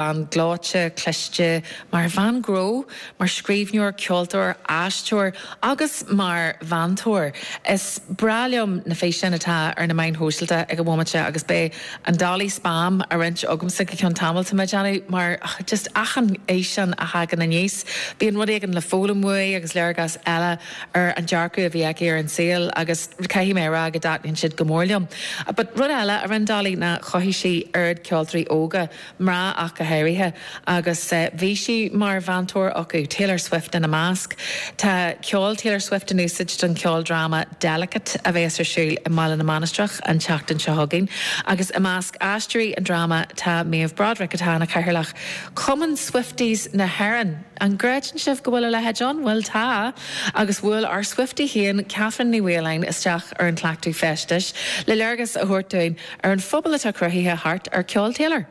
Bean gleoite, cliste, mar bhean ghnó, mar scríbhneoir, ceoltóir, aisteoir agus mar mheantóir. Is breá liom na físeáin atá ar na meáin shóisialta ag an bhomaite agus beidh an Dolly spam á roinnt agamsa go ceann tamaill, tá mé ag déanamh mar just achan fhíseán a thagann aníos bíonn rud éigin le foghlaim uaidh agus léargas eile ar an dearcadh a bhí aici ar an saol agus caithfidh mé a rá go dtaitníonn siad go mór liom. But rud eile a rinne Dolly ná chothaigh sí oiread ceoltóirí óga, mná ach go háirithe, agus bhí sí mar mheantóir acu, Taylor Swift ina measc. Tá ceol Taylor Swift in úsáid don cheoldráma Delicate a bheas ar siúl i mBaile na Mainistreach an tseachtain seo chugainn, agus i measc aisteoirí an dráma tá Méabh Broderick atá ina cathaoirleach ar Chumann Swifties na hÉireann. An gcreideann sibh go bhfuil a leithéid ann? Bhuel, tá! Agus bhuail ár Swiftie féin, Kathryn Ní Mhaoláin, isteach ar an chleachtadh feistis le léargas a thabhairt dúinn ar an phobal atá cruthaithe thart ar ceol Taylor.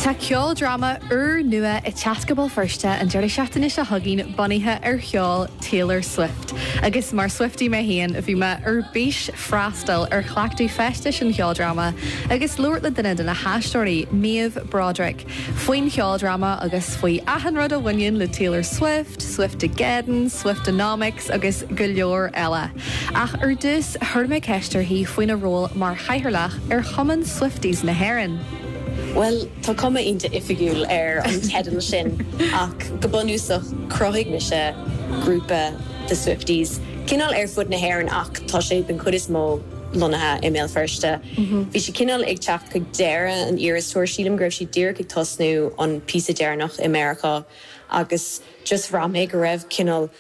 Tá ceoldráma úrnua ag teacht go Béal Feirste an deireadh seachtaine seo chugainn bunaithe ar cheol Taylor Swift. Agus mar Swiftie mé féin, bhí mé ar bís freastal ar chleachtadh feistis an cheoldráma agus labhairt le duine de na haisteoirí, Méabh Broderick. faoin cheoldráma agus faoi achan rud a bhaineann le Taylor Swift, Swiftogeddon, Swiftonomics agus go leor eile. Ach ar dtús, chuir mé ceist uirthi faoina ról mar Chathaoirleach ar Chumann Swifties na hÉireann. Bhuel, tá cuma iontach oifigiúil ar an teideal sin ach go bunúsach, chruthaigh mise grúpa de Swifties, cineál ar fud na hÉireann ach tá sé den chuid is mó, lonnaithe i mBéal Feirste. Bhí sí cineál ag teacht chuig deireadh an Eras Tour, sílim go raibh sí díreach ag tosnú an píosa deireanach i Meiriceá agus just bhraith mé go raibh cineál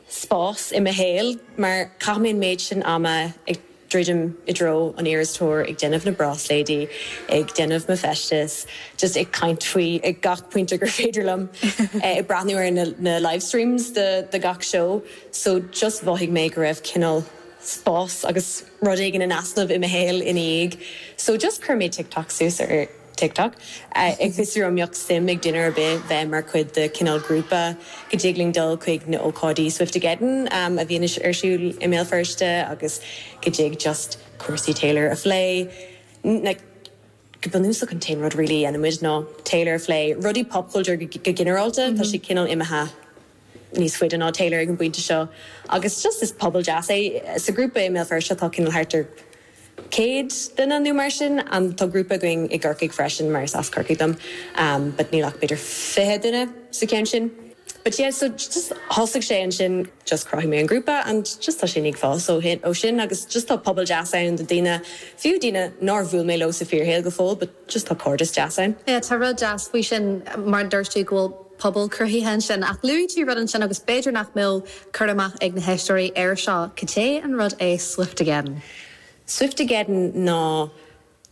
spás i mo shaol mar chaith mé an méid sin ama ag druidim i dtreo an Eras Tour, ag déanamh na bráisléidí, ag déanamh mo feisteas, just ag caint faoi ag gach pointe gur féidir liom, ag breathnú ar na livestreams de gach seó so just mhothaigh mé go raibh cineál. spás agus rud éigin in easnamh i mo shaol ina dhiaidh so just chuir mé TikTok suas ar TikTok ag fiosrú an mbeadh suim ag duine ar bith bheith mar chuid de cineál grúpa go dtig linn dul chuig na hócáidí Swiftogeddon a bhíonn ar siúl i mBéal Feirste agus go dtig just cúrsaí Taylor a phlé like go bunúsach an t-aon rud really a dhéanann muid ná Taylor a phlé rudaí pop culture go ginearálta tá sé cineál imithe níos faide ná Taylor ag an bpointe seo agus just is pobal deas é. Sa ghrúpa i mBéal Feirste tá cineál thart ar 100 duine nó mar sin and tá grúpa againn i gCorcaigh freisin mar is as Corcaigh dom but níl ach b'fhéidir 20 duine sa cheann sin but yeah so just thosaigh sé ansin just chruthaigh mé an grúpa and just tá sin ag fás ó shin agus just tá pobal deas ann de daoine, fiú daoine nár bhuail mé leo sa fíorshaol go fóill but. Just tá cairdeas deas ann. Yeah tá rud deas faoi sin mar a dúirt tú go bhfuil pobal cruthaithe ansin ach luaigh tú rud ansin agus b'fhéidir nach mbeadh cur amach ag na héisteoirí air seo caidé an rud é Swiftogeddon? Swiftogeddon ná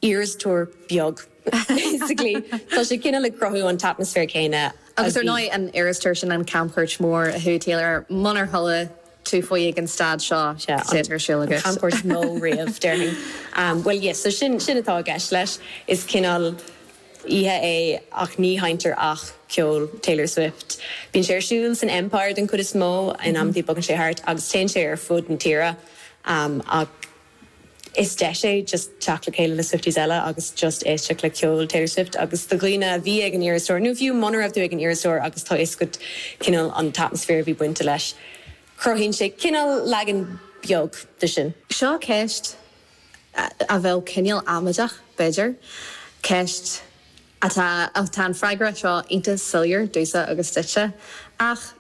Eras Tour beag basically. Tá sé cineál ag cruthú an t-atmaisféar céanna a bhí. Agus ar ndóigh an Eras Tour sin an camchuairt mór a chuaigh Taylor air munar chuala tú faoi ag an staid seo cad atá ar siúl agat? An camchuairt is mó riamh, déarfainn. Bhuel, yeah, so sin, sin atá i gceist leis. Is cineál oíche é ach ní sheinntear ach ceol Taylor Swift. Bíonn sé ar siúl san Empire den chuid is mó in amantaí bogann sé thart agus téann sé ar fud na tíre ach. Is deis é just teacht le chéile le Swifties eile agus just éisteacht le ceol Taylor Swift agus do dhaoine a bhí ag an Eras Tour nó fiú muna raibh tú ag an Eras Tour agus tá a fhios agat cineál an t-atmaisféar a bhí bainte leis cruthaíonn sé cineál leagan beag de sin. Seo ceist a bheadh cineál amaideach b'fhéidir, ceist atá an freagra seo iontas soiléir domhsa agus duitse ach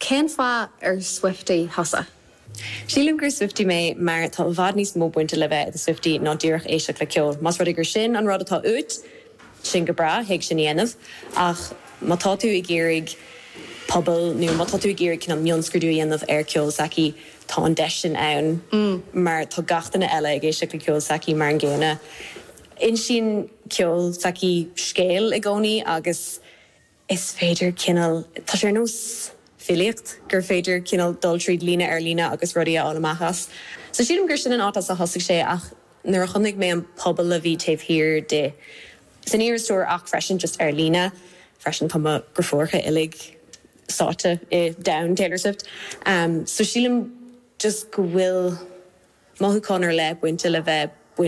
Cén fáth ar Swiftie thusa? Sílim gur Swiftie mé mar tá i bhfad níos mó bainte le bheith i do Swiftie ná díreach éisteacht le ceol. Más rud é gur sin an rud atá uait, sin go breá, thig leat sin a dhéanamh. Ach má tá tú ag iarraidh pobal nó má tá tú ag iarraidh cineál mionscrúdú a dhéanamh ar cheol s'aici, tá an deis sin ann mar tá gach duine eile ag éisteacht le ceol s'aici mar an gcéanna. Insíonn ceol s'aici scéal i gcónaí agus. Is féidir cineál, tá sé ar nós filíocht gur féidir cineál dul tríd líne ar líne agus rudaí a fháil amach as. So sílim gur sin an áit as a thosaigh sé ach nuair a chonaic mé an pobal a bhí taobh thiar di, san Eras Tour ach freisin just ar líne freisin, tá mo For You uilig sáite i domhan Taylor Swift. So sílim just go bhfuil mothúchán ar leith bainte le bheith bainte.